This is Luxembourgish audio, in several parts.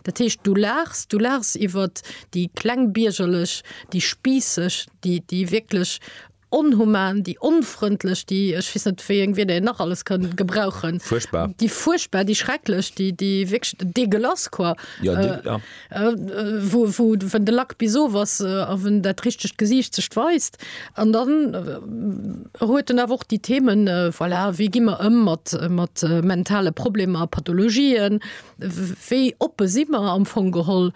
Dat heescht, du laachs, du laachs iwwert déi klengbiergerlech, déi spiisseg, déi, déi wierklech onhuman, déi onfrëndlech, déi, ech weess net, wéi eng Wierder een nach alles kënn gebrauchen. Fuerchtbar. Déi fuerchtbar, déi schrecklech, déi, déi wierklech dégueulasse, quoi. Jo, dé, ja. Wou, wou, wenn de Lack bis of ass a wenn dat richtegt Gesiicht sech weist. An dann huet en awer och déi Themen, voilà, wéi gi mer ëm mat, mat mentale Problemer a Pathologien? Wéi oppe si mer am Fong geholl?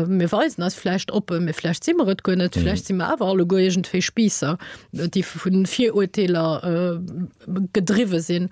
Mir weisen eis vläicht oppe, mee vläicht si mer et guer net. Vläicht si mer awer alleguer iergendwéi Spiisser, déi vu Virurteeler gedriwwe sinn.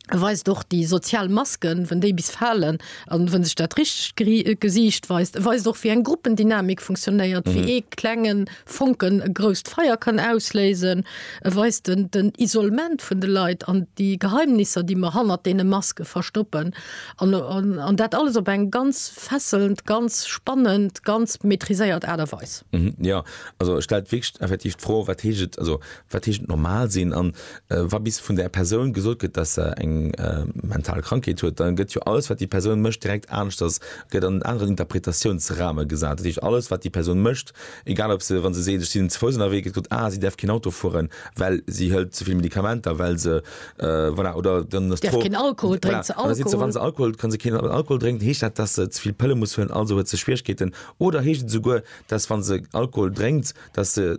Et weist och déi sozial Masken, wann déi bis falen a wann sech dat richtegt Gesiicht weist. Et weist och, wéi eng Gruppendynamik funktionéiert, wéi ee klengen Fonken e grousst Feier kann ausléisen, e weist den den Isolement vun de Leit an déi Geheimnisser, déi mer hannert deene Maske verstoppen. An an dat alles op eng ganz fesselnd, ganz spannend, ganz maitriséiert Aart a Weis. Jo, also et stellt wierklech effektiv d'Fro, wat heescht et, also wat heescht et normal sinn? An wa bis vun där Persoun gesot gëtt, dass se eng mental Krankheet huet, da gëtt jo alles, wat déi Persoun mécht, direkt aneschters, gëtt an en aneren Interpretatiounsrahmen gesat. Dat heescht, alles, wat déi Persoun mécht, Egal ob se, wa se seet, ech sinn ze Fouss ënnerwee, gëtt gesot, ah, si däerf keen Auto fueren, well si hëlt ze vill Medikamenter, well se, voilà, oder dann ass d'Fro, voilà, an da sidd se, wa se Alkohol huet, ka se keen Alkohol drénken, heescht dat, dass se ze vill Pëlle muss huelen, also huet se Schwierigkeeten, oder heescht et esouguer, dass wa se Alkohol drénkt, dass se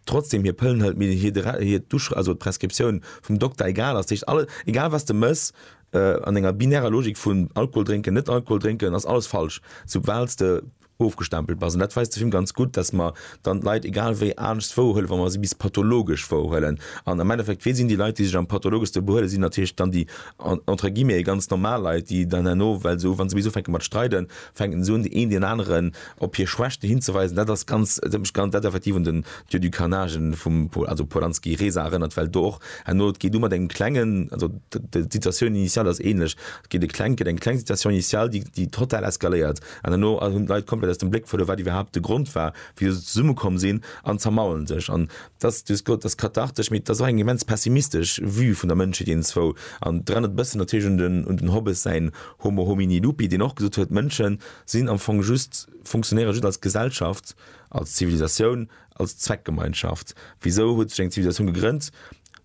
trotzdeem hir Pëllen hëlt, mee hir d'Uschrëft, also d'Prescriptioun vum Dokter egal ass? Dat heescht, alles, egal was de mëss, an enger binärer Logik vun Alkohol drénken, net Alkohol drénken, ass alles falsch, soubal s de ofgestempelt bass. An dat weist de Film ganz gutt, dass mer dann d'Leit egal wéi anescht wouerhuelen, wa mer si bis pathologesch wouerhuelen. An am Endeffekt, wie sinn déi Leit, déi sech am pathologeschste behuelen? Sinn natierlech dann déi, entre guillemets, ganz normal Leit, déi dann herno, well se, wa se bis ufänke mat streiden, fänken se un, deen een deen aneren op hir Schwächten hinzeweisen. Dat ass ganz, dat huet mech ganz, dat effektiv un den Dieu du carnage vum, also Polanski, Reza erënnert, well do och herno, et geet u mat engem Klengen, also d'Situatioun initiale ass ähnlech, et geet e Klengt, gëtt eng kleng Situation initiale, déi, déi total eskaléiert. An herno hunn d'Leit komplett aus dem Bléck verluer, wat iwwerhaapt de Grond war, wéisou se zesummekomm sinn, an zermaulen sech. An dat ass, du hues gesot, dat ass kathartesch, mee dat ass och eng immens pessimistesch Vue vun der Mënschheet iergendzwou. An et erënnert e bëssen natierlech un den, un den Hobbes säin Homo homini lupi, deen och gesot huet, d'Mënsche sinn am Fong just, fonctionnéiere just als Gesellschaft, als Zivilisatioun, Als Zweckgemeinschaft. Wisou huet sech eng Zivilisatioun gegrënnt?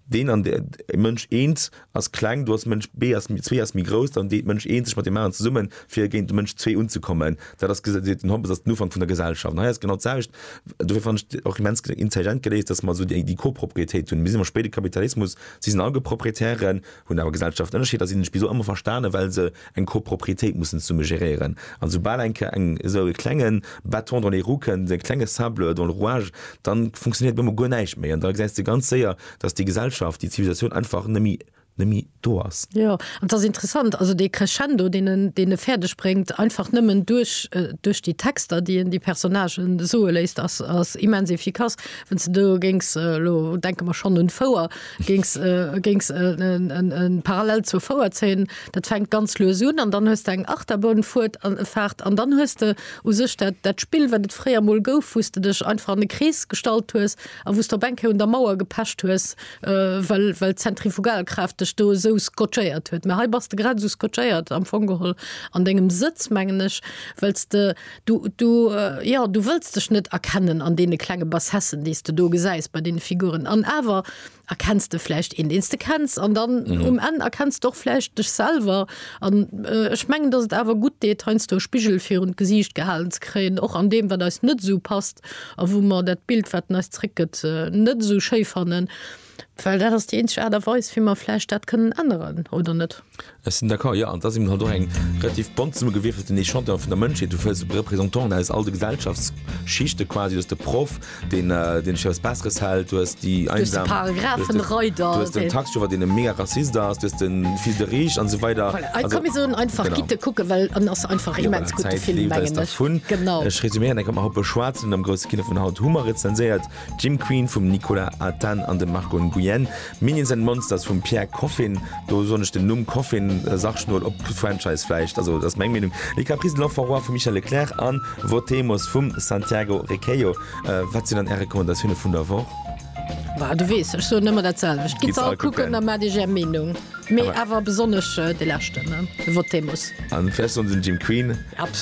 Deen an där Mënsch eent ass kleng, du ass Mënsch B ass zwee ass méi grouss, dann deet Mënsch eent sech mat deem aneren zesummen, fir géint de Mënsch zwee unzekommen. Dat ass, seet den Hobbes, ass den Ufank vun der Gesellschaft. An hei ass genau d'selwecht. Dofir fannen ech et och immens intelligent geléist, datt mer esou déi Koproprietéit hunn. Mir sinn am spéide Kapitalismus, si sinn all Geproprietären. hunn awer Gesellschaften Ënnerscheeder, sinn ech bis elo ëmmer verstanen, well se eng Copropriétéit mussen zesumme geréieren. An soubal eng Ke eng esou e klenge Bâton dans les roues kënn, esou e klenge Sable dans le rouage, da funktionéiert op eemol guer näischt méi. An da gesäis de ganz séier, datt déi Gesellschaft, déi Zivilisatioun einfach neméi neméi do ass. Jo, an et ass interessant, also dee Crescendo, deen en deen e fäerdeg bréngt, einfach nëmmen duerch duerch déi Texter, déi en déi Personnagë soe léisst, ass ass immens efficace. Wann s de do géings elo, denke mer schonn un d'Fouer, Géings géings en parallel zur Fouer zéien, dat fänkt ganz lues un an dann hues de eng Achterbahnfuert an Fahrt an dann hues de u sech dat dat Spill wat et fréier mol gouf wous de dech einfach an e Krees gestallt hues a wous de op eng Kéier un der Mauer gepecht hues well well d'Zentrifugalkraaft dech do esou scotchéiert huet. Mä hei bass de grad esou scotchéiert am Fong geholl an dengem Sëtz mengen ech well s de Du, du, jo, du wëlls dech net erkennen an deene klenge Bassessen, déi s de do gesäis bei deene Figuren. An awer erkenns de vläicht een, deen s de kenns. An dann um Enn erkenns de och vläicht dech selwer. An ech mengen, datt et awer gutt deet, heiansdo e Spigel virun d'Gesiicht gehalen ze kréien, och an deem, wat eis net esou passt a wou mer dat Bild, wat en eis zréckgëtt, net esou schéi fannen. Well dat ass déi eenzeg Aart a Weis, wéi mer vläicht dat kënnen änneren, oder net? Ech sinn d'accord, jo. An da si mer halt och eng relativ bont zesummegewierfelten Echantillon vun der Mënschheet. Du fënns Représentanten aus all de Gesellschaftsschichte quasi. Du hues de Proff, deen, deen sech fir eppes Besseres hält. Du hues déi Einsam. Du hues de Paragraphenreider. Du hues den Taxichauffeur, deen e mega Rassist ass. Du hues de Fils de Riche an esou weider. Voilà. Also komm, mir soen einfach, gitt e. Genau. kucken, well en ass einfach immens gutt, de Film, mengen ech. Genau. Ech resuméieren eng Kéier, Mer hu beschwat sinn am grousse Kino vun haut, hu mer rezenséiert. Jim Queen vum Nicolas Athane an dem Marco Nguyen, Minions and Monsters vum Pierre Coffin, do soen ech den Numm Coffin sachschnol op Franchise vläicht, also dat ass meng Meenung, Les Caprices de l'Enfant Roi vum Michel Leclerc an Votemos vum Santiago Requejo. Wat sinn dann Är Recommandatioune vun der Woch? Bah, du weess, ech soen ëmmer dat selwecht, Gitt se all kucken a maacht Iech Är Meenung, mee awer besonnesch dee leschten, de Votemos. A vläicht soen se den Jim Queen. Absolut.